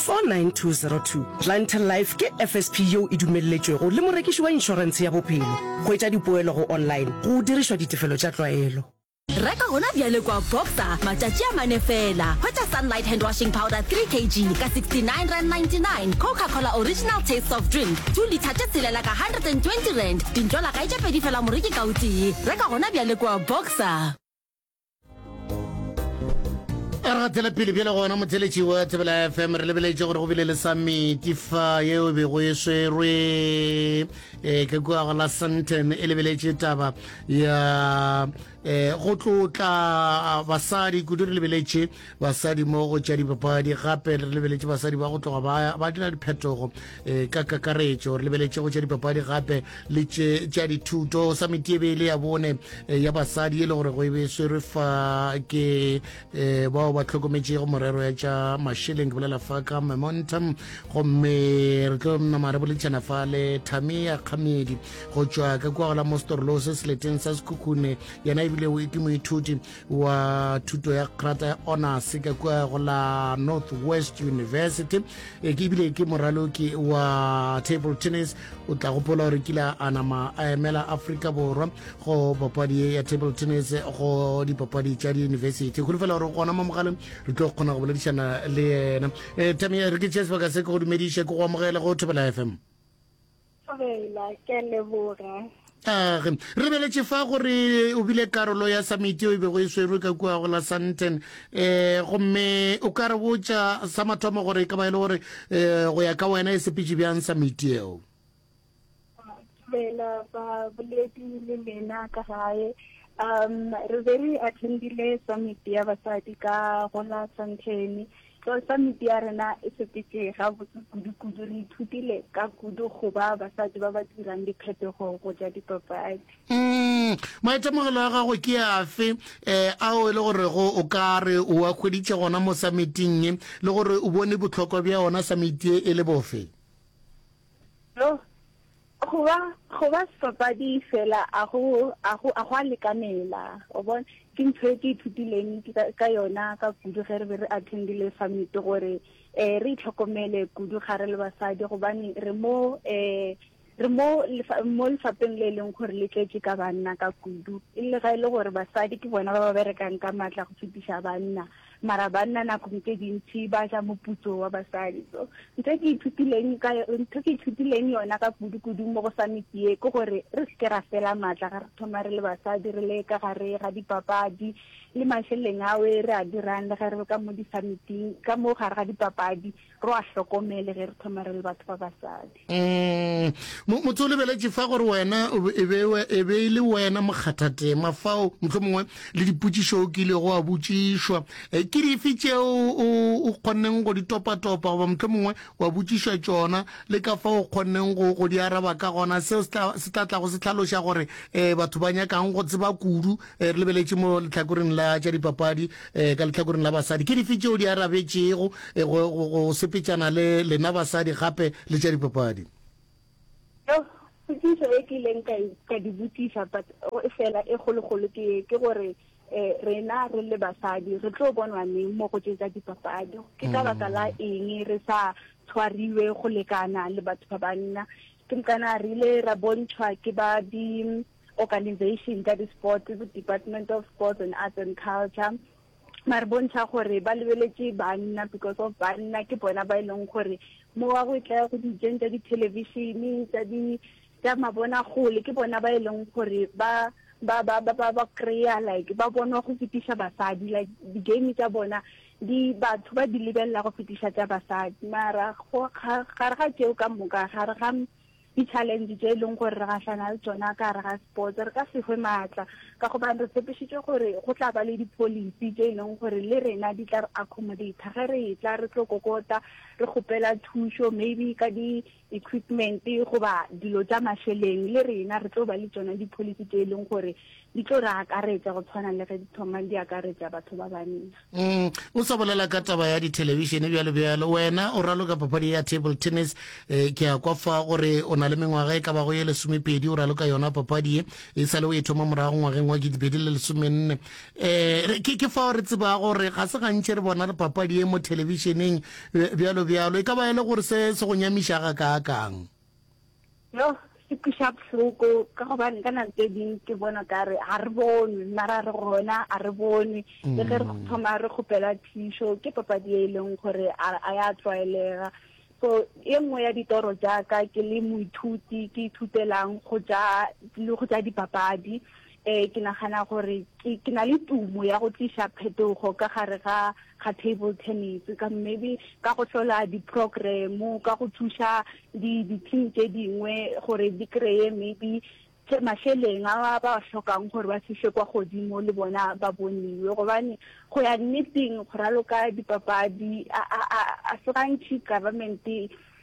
49202, Planter Life ke FSP yeo e dumelletšwego le morekiši wa inšorentshe ya bophelo. Hwetša dipoelo go online go dirišwa ditefelo tša tlwaelo. Reka gona bjale kua Boxer matšatši a mane feela. Hwetša Sunlight Handwashing Powder 3 kg ka 69.99 rand, Coca Cola Original Taste Soft Drink 2 litha tše tshelela ka 120 rand, dintšola ga e tše pedi feela moreki ka o tee. Reka gona bjale kua Boxer. a re gatela pele bjale gona motheletši wa thebela fm re lebeletše gore go bile le samiti fa yeo e bego e swerwe um ke kua go la santon e lebeletše taba ya um go tlotla basadi kudu re lebeletše basadi mo go tša dipapadi gape re lebeletše basadi ba go tloga ba ba dira diphetogo um ka kakaretšo re lebeletše go tša dipapadi gape le tše tša dithuto sa metiebele ya bone eh, ya basadi e le gore go e be swerwe fa ke um bao ba tlhokometšego morero ya tša masheleng ke bolela fa ka momentum gomme re tlo nama re boletšana fa le tamia kgamedi go tšwa ka kwa gola mo storolose seleteng sa sekhukhune yena ebile ke moithuti wa thuto ya krata ya honors ka kua go la north west university e ke ebile ke moraloki wa table tennis o tla gopola gore kila a nama a emela aforika borwa go papadi ya table tennis go dipapadi tša diyunibesithi go lefela gore gona mo mogaleng re tlo kgona go boledišana le yena um eh, tamia re ke tšea sebaka se ke go dumediše ke go amogele go thobela fm Thobela, ke a leboga. Age, re beletše fa gore o bile karolo ya samiti e bego e swerwe ka kua go la Sandton. Um gomme o ka re botša sa mathomo gore e ka ba e le gore um go ya ka wena e sepetše bjang samiti eo? Thobela, baboledi le lena ka gae. Um re be re attendile samiti ya basadi ka go la Sandton. Tlou Samiti ya rena e sepetše gabotse kudu-kudu. Re ithutile ka kudu go ba basadi ba ba dirang diphetogo go ja dipapadi. Umm, maitemogelo a gago ke afe um ao e le gorego o ka re o a hweditše gona mo samiting ye, le gore o bone bohlokwa bja ona samiti ye e le bofe? Yoh, Go ba, go ba sebapadi feela a go, a go, a go a lekanela. O bona? Ke ntho e ke ithutileng ka, ka yona ka kudu ge re be re attendile summit, gore um re itlhokomele kudu ga re le basadi, gobane re mo um re mo lefa, mo lefapheng le e leng gore le tletše ka banna ka kudu, e le ge e le gore basadi ke bona ba ba berekang ka matla go fetiša banna. Mara banna nakong tše dintši ba ja moputso wa basadi. So ntho ke ithutileng ka ntho ke ithutileng yona ka kudu kudu mo go summit ye ke gore re se ke ra fela maatla ga re thoma re le basadi re le ka gare ga dipapadi le masheleng awe re a dirang le ge re ka mo di-summiting ka mo gare ga dipapadi Ro a hlokomele ge re thoma re le batho ba basadi. Umm, motse o lebeletše fa gore wena e be, e be e le wena mokgathatema fao, mohlomongwe le dipotšišo o kilego wa botšišwa. Eh, ke dife tšeo o, o kgonneng go di topatopa goba mohlomongwe wa botšišwa tšona, le ka fao o kgonneng go, go di araba ka gona? Seo se tla, se tla tlago se hlaloša gore eh, batho ba nyaka'ng go tseba kudu. Eh, re lebeletše mo lehlakoreng la tša dipapadi, um ka lehlakoreng la basadi ke dife tšeo di arabetšego eh, go, go, go sepetšana le lena basadi gape le tša dipapadi Yo, potšišo e ke ileng ka e- ka di botšiša but o- e fela e kgolokgolo ke ye, ke gore um rena re le basadi re tlo bonwa neng mo go tše tsa dipapadi ke ka baka la eng re sa tshwariwe go lekana le batho ba banna ke mokana re ile ra bontšhwa ke ba di organization tša di sports bo department of sports and arts and culture mare bontšha gore ba lebeletše banna because of banna ke bona ba e leng gore mo wa go e tla go dijeng tša dithelevishene tša di tša mabona gole ke bona ba e leng gore ba ba ba ba ba ba kry-a like ba bonwa go fetiša basadi like di-game tša bona di batho ba di lebelela go fetiša tša basadi mara gare ga tšeo ka moka gare ga Di-challenge tše e leng gore re gahlana le tsona ka gare ga sports re ka se hwe maatla ka gobane re tshepišitšwe gore go tla ba le di-policy tše e leng gore le rena di tla re accommodata ge re etla re tlo kokota re kgopela thušo maybe ka di-equipment goba dilo tša mašeleng le rena re tlo ba le tsona di-policy tše e leng gore di tlo re akaretsa go tshwana le ge di thomang di akaretsa batho ba banna Mm, o sa bolela ka taba ya dithelebishene bjalo bjalo wena o raloka papadi ya table tennis eh, ke ya kwa fa gore o na le mengwaga e ka bago ye lesomepedi o raloka yona papadi e e sale o e thoma morago ngwageng wa kidibedi le lesomenne um ke, ke fao re tseba gore ga se gantši re bona re papadi e mo thelebišeneng bjalo bjalo e ka ba e le gore se se go nyamiša ga kaakang Yoh se kweša bohloko ka gobane ka nako tse ding ke bona ka re ga re bonwe mara re gona a re bonwe le ge re mm. thoma re kgopela thišo ke papadi e e leng gore a ya tlwaelega so e nngwe ya ditoro jaaka ke le moithuti ke ithutelang go ja le go ja dipapadi Ee, ke nagana gore ke, ke na le tumo ya go tliša phetogo ka gare ga, ga table tennis, ka maybe ka go hlola di-program-o, ka go thuša di, di-team tše dingwe gore di kreye maybe tše, mašeleng a ba ba hlokang gore ba fihle kwa godimo le bona ba boniwe. Gobane go ya nneteng go raloka dipapadi a, a, a, a se gantši government-e.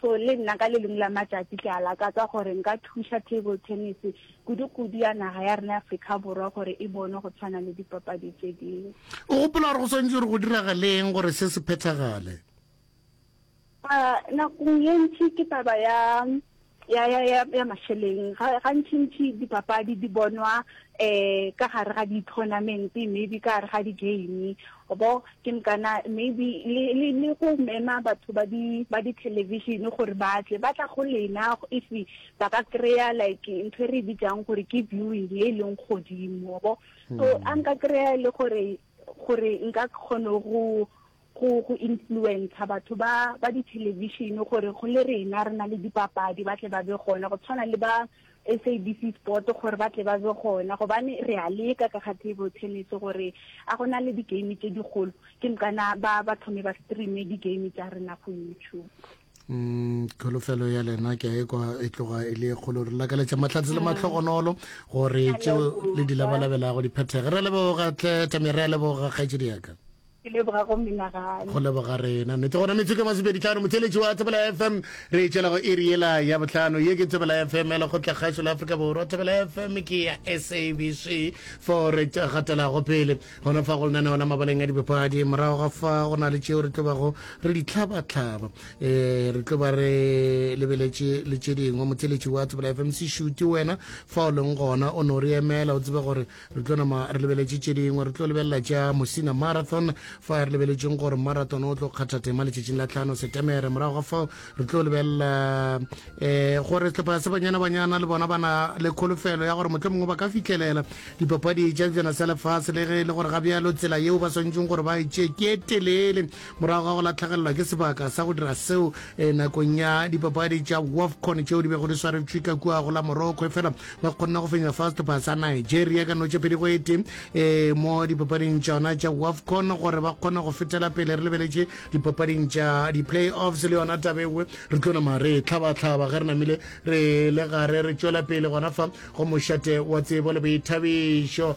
So le nna ka le lengwe la matšatši ke a lakatsa gore nka thuša table tennis kudu-kudu ya naga ya rena Afrika Borwa gore e bonwe go tshwana le dipapadi tše dingwe. O gopola gore go swantšwe gore go diragale eng gore se se phethagale? Nakong ye ntši ke taba ya ya ya ya ya mašeleng ga gantši ntši dipapadi di bonwa eh ka gare ga di-tournament maybe ka gare ga di-game bo Ke nka na maybe le, le, le go mema batho ba di, ba di television gore ba tle, ba tla go lena if ba ka kry-a like ntho e re e bitsang gore ke viewing e e leng godimo, bo. So, a nka kry-a e le gore, gore nka kgone go, go, go influencer batho ba, ba di television gore go le rena re na le dipapadi ba tle ba be gona, go tshwana le ba, SABC Sport gore ba tle ba be gona gobane re a leka ka ga table tennis gore a go na le di-game tše dikgolo ke mkana ba ba thome ba streame di-game tša rena go YouTube Mm, kholofelo ya lena ke a ekwa e tloga e le kgolo re lakaletša mahlatse le matlhogonolo gore tšeo le di labalabelago di phethege re leboga tle tamere a leboga kgaetšedi yaka ke leboga go menagane go leboga rena nnete gona metsotso e masepedi tlhano motheletši wa thebela fm re e tšela go iri ela ya botlhano ye ke thebela fm ya lekgotla kgašo la afrika borwa thebela fm ke ya sabc for re gatelago pele gona fa go lenaneo la mabaleng a dibapadi morago ga fa go na le tšeo re tlobago re di tlhabatlhaba um re tloba re lebeletše le tše dingwe motheletši wa thebela fm se šute wena fa o leng gona o ne o re emela o tsebe gore re tlo nama re lebeletše tše dingwe re tlo lebelela tša mosina marathon fa re lebeletšeng gore marathon o tlo kgatha tema letšatšing la tlhano setemere morago ga fao re tlo lebelela um eh, gore sehlopha se banyana banyana le bona bana le kholofelo ya gore motlho mongwe ba ka fitlhelela dipapadi tša sejana sa lefase le ge e le gore ga bjalo tsela yeo ba swanetseng gore ba e tšee ke e telele Morago ga go lahlegelelwa ke sebaka sa go dira seo nakong ya dipapadi tša Wafcon tšeo di bego di swaretšwe ka kua go la Morocco, efela ba kgonne go fenya Fast Pass ya Nigeria ka notša pedi go e tee mo dipapading tšona tša Wafcon gore ba kgone go fetela pele. Re lebeletše dipapading tša di-playoffs le yona taba e nngwe. Re tlo nama re e hlabahlaba ge re namile re le gare re tšwela pele gona fa go mošate wa tsebo le boithabišo.